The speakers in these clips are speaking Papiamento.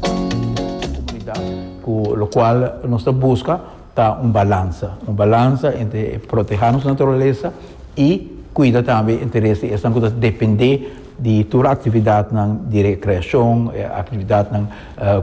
Comunidad, cu locual nos ta busca ta un balanza, un balanza entre proteha nos naturaleza y cuida tambe interes di esnan cu ta depende di tur actividadnan di recreacion, actividadnan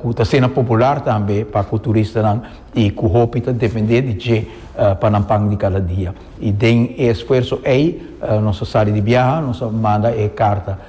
cu ta asina popular tambe pa cu turistanan y cu hopi ta depende di dje pa nan pan di cada dia. Y den e esfuerzo ey nos a sali di biaha, nos a manda e carta.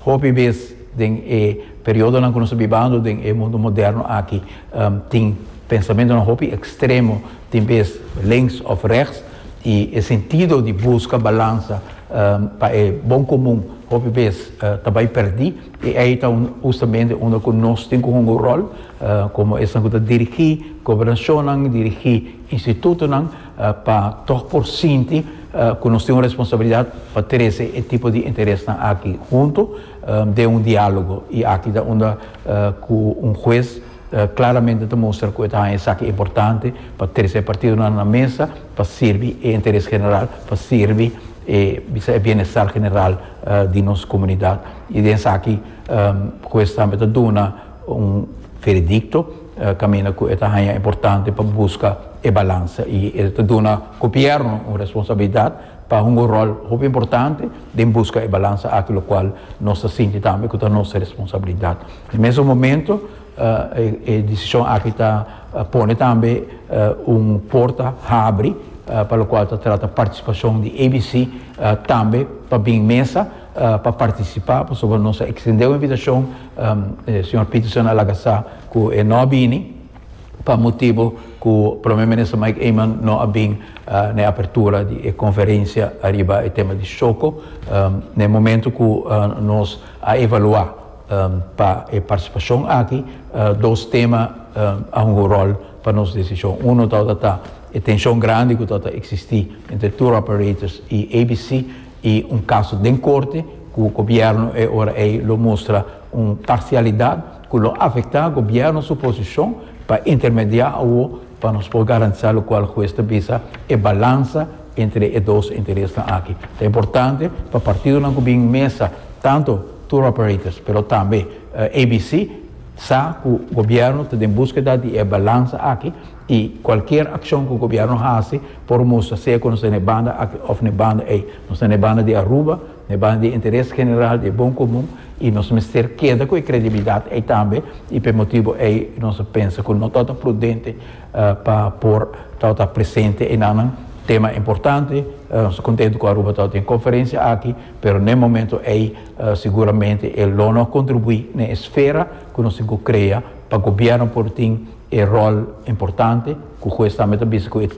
Hopi bes den e periodonan ku nos ta bibando den e mundu moderno aki tin pensamentonan hopi ekstremo, tin bes links òf rèks, i e sentido di buska balansa pa e bon komun hopi bes ta bai pèrdí. I ei ta hustamente unda ku nos tin ku hunga un ròl komo esnan ku ta dirigí gobernashonnan, dirigí institutonan. pa tog por sinti cu nos tin un responsabilidad pa trece e tipo di interesnan aki hunto den un dialogo y aki ta unda cu un huez claramente ta mustra cu e ta haña esaki importante pa trece e partidonan na mesa pa sirbi e interes general, pa sirbi e bisa e bienestar general di nos comunidad y den esaki huez tambe ta duna un veredicto. Caminda cu e ta haña importante pa busca e balansa y e ta duna Gobierno un responsabilidad pa hunga un rol hopi importante den busca e balansa aki, locual nos ta sinti tambe cu ta nos responsabilidad. Na mesun momento e decision aki ta pone tambe un porta habri pa locual ta trata participacion di ABC tambe pa bin mesa pa participa pasobra nos a extende un invitacion Señor Peterson a laga sa cu e no a bini pa motibo cu Prome Minister Mike Eman no a bin na e apertura di e conferencia ariba e tema di Shoco na e momento cu nos a evalua pa e participacion aki dos tema a hunga un rol pa nos decision. Uno tabata ta e tension grandi cu tabata existi entre tour operators y ABC. y un caso den corte cu gobierno e ora ey lo mustra un parcialidad cu lo afecta gobierno su posicion pa intermedia awo pa nos por garantisa locual hues ta bisa e balansa entre e dos interesnan aki. Ta importante pa partidonan cu bin mesa tanto tour operators pero tambe ABC sa cu gobierno ta den busqueda di e balansa aki. I cualkier accion cu gobierno haci por mustra sea cu nos ta na e banda aki of na e banda ey. Nos ta na e banda di Aruba, na e banda di e interes general, di e bon comun y nos mester keda cu e credibilidad ey tambe y pa e motibo ey nos a pensa cu no tabata prudente pa por tabata presente enanan. Tema importante, nos ta contento cu Aruba tabata den e conferencia aki pero na e momento ey seguramente e lo no a contribui na e esfera cu nos tin cu crea Pa gobierno por tin e rol importante cu juez tambe ta bisa cu e.